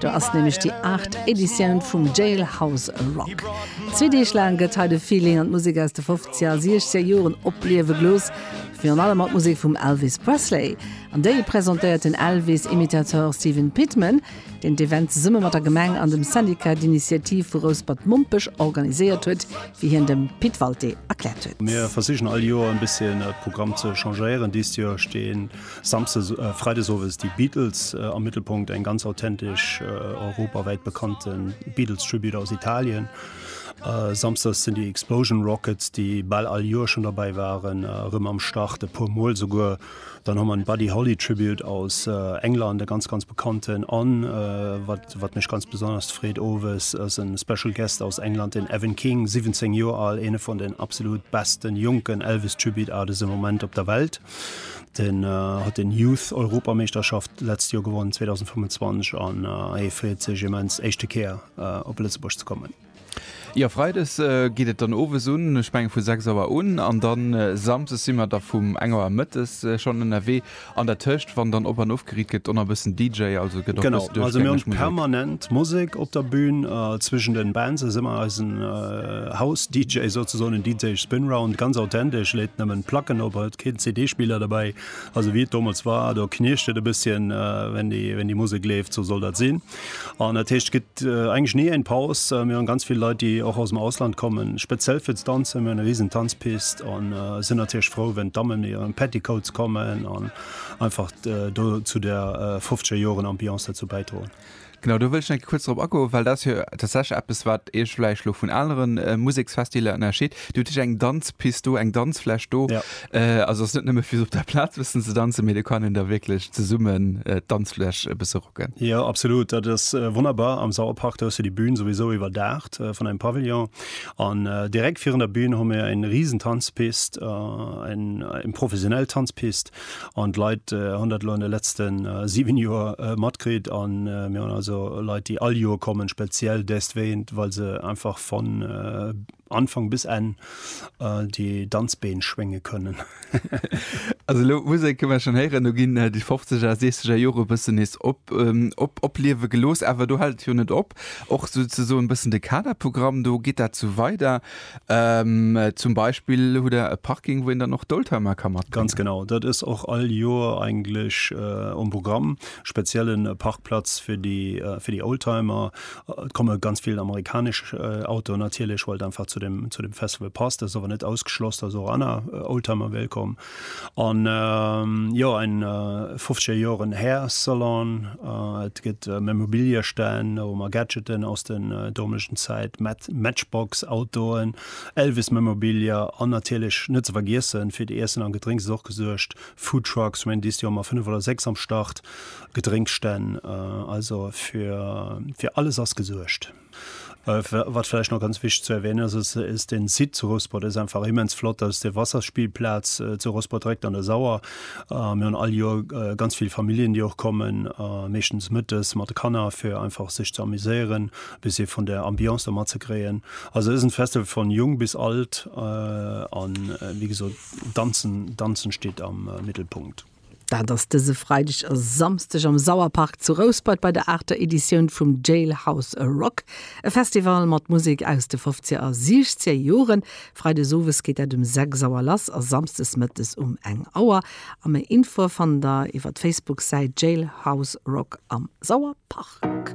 Do ass nämlech déi aacht Editioun vum Jailhouse Rock. Zwee Deeg laang gëtt hei de Feeling an d'Musek aus de Fofzeger a Siechzeger Joren opliewe gelooss, virun allem mat Musek vum Elvis Presley. An déi presentéiert den Elvis-Imitateur Stephen Pitman, deen d'Event zesumme mat der Gemeng an dem Syndicat d'Initiative vu Rouspert-Mompech organiséiert huet, wéi hien dem Pit Walté erkläert huet. Mir versichen all Joer e bësschen de Programm ze changéieren. Dëst Joer stinn. Samsdes a Freides owes déi Beatles am Mëttelpunkt, eng ganz authentesch europawäit bekannte Beatles-Tribute aus Italien. Samsdes sinn déi Explosion Rockets, déi bal all Joer schon derbäi waren, erëm am Start, e puer Mol souguer. Dann hu mer en Buddy Holly Tribute aus England, e ganz, ganz bekannten. An wat, wat mech ganz besonnesch freet, owes ass e Special Guest aus England, den Evan King, 17 Joer al, eene vun den absolut besten jonken Elvis-Tribute Artists am Moment op der Welt. Den huet den Youth Europameeschterschaft d'letzt Joer gewonnen, 2025 an hie freet sech immens d'éischte Kéier op Lëtzebuerg ze kommen. Jo Freides geet et dann owes un, ech mengen vu 6 Auer un an dann Samsdes si mer da vum eng Auer Mëttes schonn ënnerwee an der Tëscht wann dann op an of Geriet gëtt on a bëssen DJ, also gëtt och bëssen duerchgängeg Musek. Genau, also mir hunn permanent Musek op der Bühn. Zwëschen den Bands ass ëmmer eisen House DJ souzesoen, en DJ Spin Round, ganz authentesch, leet nëmmen Placken op, huet keen CD Spiller derbäi, also wéi et domols war, do knirscht et e bësschen wenn déi wenn déi Musek leeft, sou soll dat sinn. An dat heescht et gëtt eigentlech ni eng Paus. Mir hunn ganz vill Leit déi och aus dem Ausland kommen, speziell fir ze danzen. Mir hunn e risen Tanzpist an sinn natierlech frou wenn d'Dammen an hiren Petticoats kommen an. einfach do zu der fofzeger Joren Ambiance derzou bäidroen. Genau, do wëll ech enke kuerz drop agoen, well dat ass jo tatsächlech eppes, wat Iech vläicht elo vun anere Museksfestiler ënnerscheet. Dir hutt iech eng Danzpist do, eng Danzfläch do. Also ass net nëmme fir sou op der Plaz e bëssen ze danzen, mee do kann een da wierklech zesummen d'Danzfläch e bësse rocken. Jo, absolut, dat ass wonnerbar. Am Sauerpark, do hues de déi Bühn souwisou iwwerdaacht vun engem Pavillon. An direkt virun der Bühn hu mir eng risen Tanzpist, eng professionell Tanzpist an d'Leit hunn dat elo an de letzte 7 Joer matkritt. A mir hunn also Leit, déi all Joer kommen, speziell destwéint, well se einfach von Anfang bis Enn déi Danzbeen schwénge kënnen. Also elo Musek kënne mer schonn héieren, do ginn déi fofzeger, seechzeger Jore e bëssen nees op, op, opliewe gelooss. Awer do hält et jo net op. Och souzesoen e bëssen de Kaderprogramm, do geet dat sou weider. Zum Beispill hutt Der e Parking, wou een dann och d'Oldtimer ka matbréngen. Ganz genau. Dat ass och all Jor eigentlech um Programm, speziellen Parkplatz fir déi, fir déi Oldtimer. Et komme ganz vill amerikanesch Autoen natierlech, well et einfach zu dem, zu dem Festival passt. Dat ass awer net ausgeschloss, dass och aner Oldtimer wéilt kommen. An jo, en 50 Joren Hair Salon, et gëtt Memorabilia-Stänn, da hu mer Gadgeten aus den domeschen Zäit, Matchbox Autoen, Elvis Memorabilia an natierlech net ze vergiessen, fir d'Iessen an Gedrénks ass och gesuergt, Food Trucks, Wendy's, déi hu mer 5 oder 6 am Start. Gedrénk stänn, also fir fir alles ass gesuergt. Wat vläicht nach ganz wichteg ze erwänen ass, ass ass den Site zu Rouspert, dat ass einfach immens flott, dat ass de Wasserspielplatz zu Rouspert direkt an der Sauer. Mir hunn all Joer ganz vill Familljen déi och kommen, meeschtens mëttes mat de Kanner fir einfach sech ze amuséieren, e bëssi vun der Ambiance do mat ze kréien. Also et ass en Festival vun Jong bis Alt, an wéi gesot danzen, danzen steet am Mittelpunkt. Dat ass dëse Freideg a Samsdeg am Sauerpark zu Rouspert bei der aachter Editioun vum Jailhouse A Rock, e Festival mat Musek aus de fofzeger a siechzeger Joren. Freides owes geet dat um 6 Auer lass a samsdes mëttes um eng Auer. A méi Infoe fannt der iwwer d'Facebook-Säit Jailhouse Rock am Sauerpark.